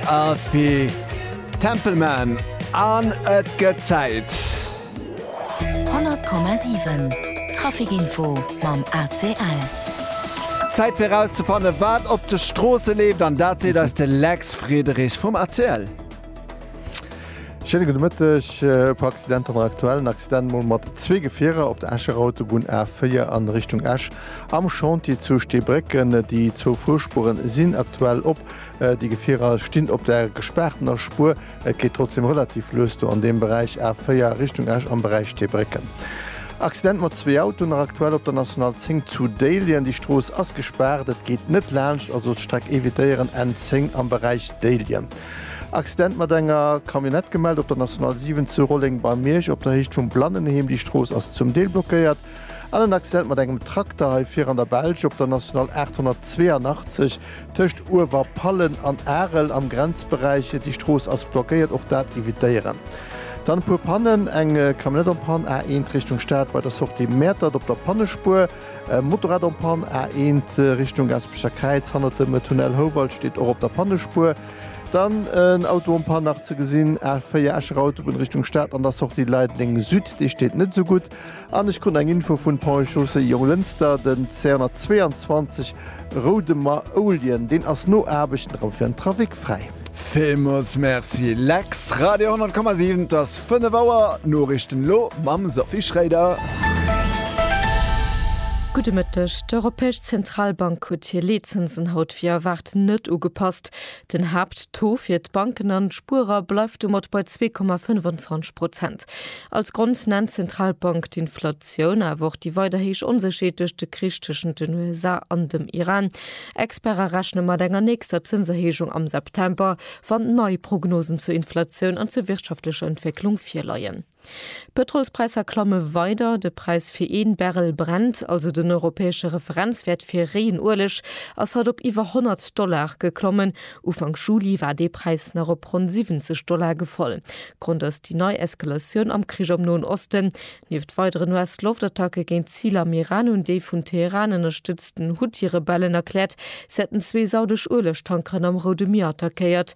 Aarfee Tempelman an et gëtt Zäit. 100,7 Traficinfo mam ACL. Zäit fir erauszefanne wat op de Stroosse leeft an dat seet eis de Lex Friederich vum ACL. Schéine gudde Mëtteg. E puer Accidenter mat aktuellen Accident mol mat zwee Gefierer op der Escher Autobunn A4 an Richtung Esch am Chantier zu Steebrécken. Déi zwou Fuerspuren sinn aktuell op. Déi Gefierer stinn op der gespaartener Spuer. Et geet trotzdeem relativ lues do an deem Beräich, A4 Richtung Esch am Beräich Teebrécken. Accident mat zwee Autoen nach aktuell op der National 10 zu Déiljen. Déi Strooss ass gespaart, et geet net laanscht, also d'Streck evitéieren, N10 am Beräich Déiljen. Accident mat enger Camionnette gemellt op der National 7 zu Rolleng bei Miersch op der Héicht vum Blannenheem. Déi Strooss ass zum Deel blockéiert, An en Accident mat engem Trakter hei vir an der Belsch op der National 882 tëscht Uewerpallen an Arel am Grenzberäich. Déi Strooss ass blockéiert, och dat evitéieren. Dann e puer Pannen, eng Camionnette en panne, A1 Richtung Stad bei der Sortie Mäertert op der Pannespuer, e Motorrad en panne, A1 Richtung Gaasperecher Kräiz hannert dem Tunnel Houwald, steet och op der Pannespuer. Dann en Auto en panne, nach ze gesinn, A4 Escher Autobunn Richtung Stad an der Sortie Leideleng Süd, dee steet net esou gutt. An ech krut eng Info vun Ponts et Chaussées Jonglënster, den C122 Roudemer Ouljen, deen ass no Aarbechten erëm fir den Trafic fräi. Villmols Merci Lex, Radio 100,7 et ass 5 Auer, d'Noriichten elo mam Sophie Schréider. Gudde Mëtteg, D'Europäesch Zentralbank huet hir Leetzinsen haut wéi erwaart net ugepasst. Den Haapttaux fir d'Banken an d'Spuerer bleift domat bei 2,25 Prozent. Als Grond nennt d'Zentralbank d'Inflatioun, awer och déi weider héich Onsécherheet duerch de Krich tëschent den USA an dem Iran. Experte rechne mat enger nächster Zënserhéijung am September, wann nei Prognosen zur Inflatioun an zur wirtschaftlecher Entwécklung virleien. D'Pëtrolspräisser klamme weider. De Präis fir ee Barrel Brent, also den europäesche Referenzwäert fir réien Ueleg, ass haut op iwwer 100 Dollar geklommen. Ufank Juli war dee Präis nach op ronn 70 Dollar gefall. Grond ass déi nei Eskalatioun am Krich am Noen Osten. Nieft weideren US-Loftattacke géint d'Ziler am Iran hunn déi vun Teheran ënnerstëtzten Huthi-Rebellen erkläert, se hätten zwee saudesch Uelegtankeren am Roude Mier attackéiert.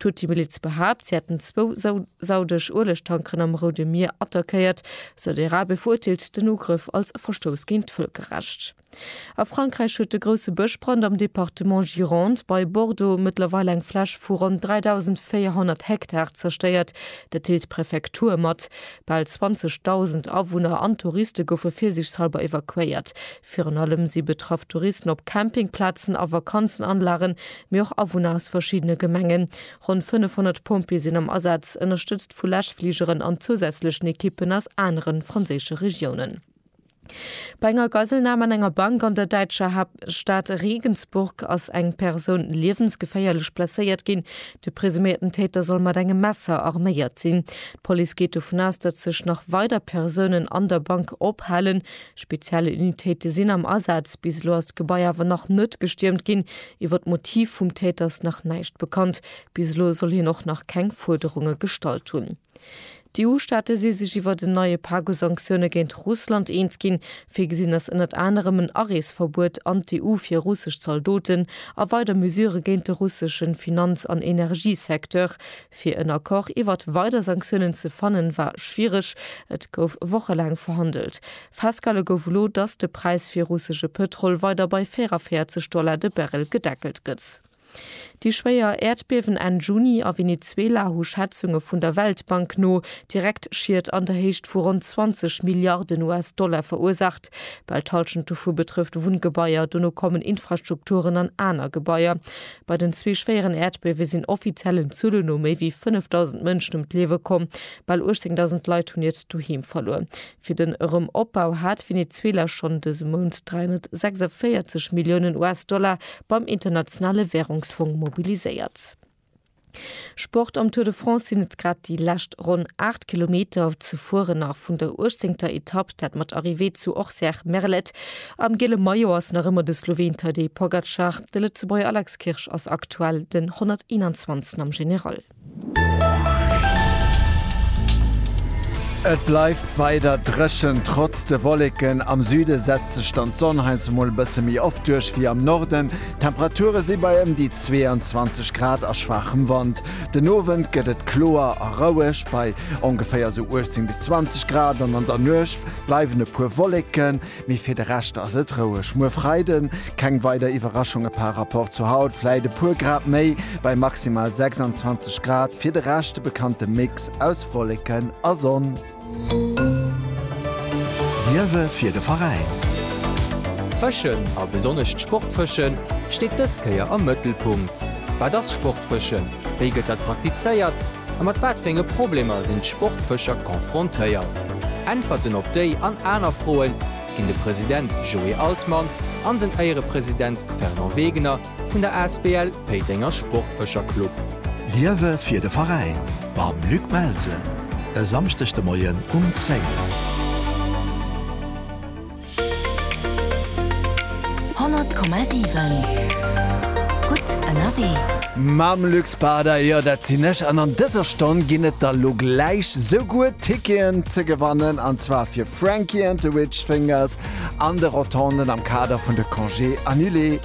D'Huthi-Miliz behaapt, si hätten zwou saudesch Uelegtankeren am Roude Mier attackéiert. Saudi-Arabie verurteelt den Ugrëff als Verstouss géint d'Vëlkerrecht. A Frankräich huet de grousse Bëschbrand am Departement Gironde bei Bordeaux mëttlerweil eng Fläch vu ronn 3.400 Hektar zerstéiert. Dat deelt d'Prefektur mat. Bal 20.000 Awunner an Touriste goufe virsiichtshallber evakuéiert. Virun allem si betraff Touristen op Campingplazen a Vakanzenanlagen, mee och Awunner aus verschiddene Gemengen. Ronn 500 Pompjee sinn am Asaz, ënnerstëtzt vu Läschfligeren an zousätzlechen Ekippen aus anere franséische Regiounen. Bei enger Geiselnam an enger Bank an der däitscher Haaptstad Regensburg ass eng Persoun liewensgeféierlech blesséiert ginn. De presuméierten Täter soll mat engem Messer arméiert sinn. D'Police geet dovun aus, datt sech nach weider Persounen an der Bank ophalen. Speziell Unitéite sinn am Asaz. Bis elo ass d'Gebai awer nach net gestiermt ginn. Iwwer d'Motiv vum Täter ass nach näischt bekannt. Bis elo soll hien och nach keng Fuerderunge gestallt hunn. D'EU-Staate si sech iwwer en neie Pak u Sanktioune géint Russland eens ginn. Virgesinn ass ënnert anerem en Areesverbuet an d'EU fir russesch Zaldoten a weider Mesurë géint de russesche Finanz an Energiesecteur. Fir en Accord iwwert weider Sanktiounen ze fannen, war schwiereg. Et gouf wochelaang verhandelt. Festgehale gouf elo, dass de Präis fir russesche Pëtrol weider bei 44 Dollar de Barrel gedeckelt gëtt. Déi schwéier Äerdbiewen Enn Juni a Venezuela hu Schätzunge vun der Weltbank no direkt Schied an der Héicht vu ronn 20 Milliarden US-Dollar verursaacht. Bal d'Hallschent dovu betrëfft Wunngebaier, dono kommen Infrastrukturen an aner Gebaier. Bei den zwee schwéieren Äerdbiewe sinn offiziellen Zuele no méi wéi 5.000 Mënschen ëm d'Liewe komm. Bal 18.000 Leit hunn hiert Doheem verluer. Fir den Erëmopbau hat Venezuela schonn dëse Mount 346 Milliounen US-Dollar beim Internationale Währungsfong mobiliséiert. Sport Am Tour de France sinn et grad déi lescht ronn 8 Kilometer ze fueren nach vun der uechtzéngter Etapp, dat mat Arrivée zu Orcières-Merlet. Am giele Maillot ass nach ëmmer de Sloween Tadej Pogacar, de Lëtzebuerger Alex Kirsch ass aktuell den 121. am General. Et bleift weider dréchen, trotz de Wolleken. Am Süde setzt sech dann d'Sonn heiansdo mol e bësse méi oft duerch wéi am Norden. D'Temperature si bei ëm déi 22 Grad a schwaachem Wand. Den Owend gëtt et kloer a roueg bei ongeféier sou 18 bis 20 Grad an an der Nuecht bleiwen e puer Wolleken, mee fir de Rescht ass et roueg. Muer Freide keng weider Iwwerraschunge par Rapport zu haut, vläit e puer Grad méi bei maximal 26 Grad. Fir de Rescht de bekannte Mix aus Wolleken a Sonn. Liewe fir de Veräin! Fëschen, a besonnesch d'Sportfëschen, steet dës Kéier am Mëttelpunkt. Wat ass Sportfëschen, wéi gëtt dat praktizéiert a mat wat fir enge Problemer sinn d'Sportfëscher confrontéiert? Äntwerten op déi an aner Froen ginn de President Joé Altmann an den Éierepresident Fernand Wegener Vun der Asbl Péitenger Sportfëscher Club. Liewe fir de Veräin mam Luc Melsen e Samschdeg de Moien um 10. 100,7 Gutt ënnerwee. Mam Luc Spada, jo dat sinn ech. An an dëser Stonn ginn et da lo gläich souguer Ticketen ze gewannen, an zwar fir Frankie and the Witch Fingers an de Rotonden am Kader vun de Congés Annulés.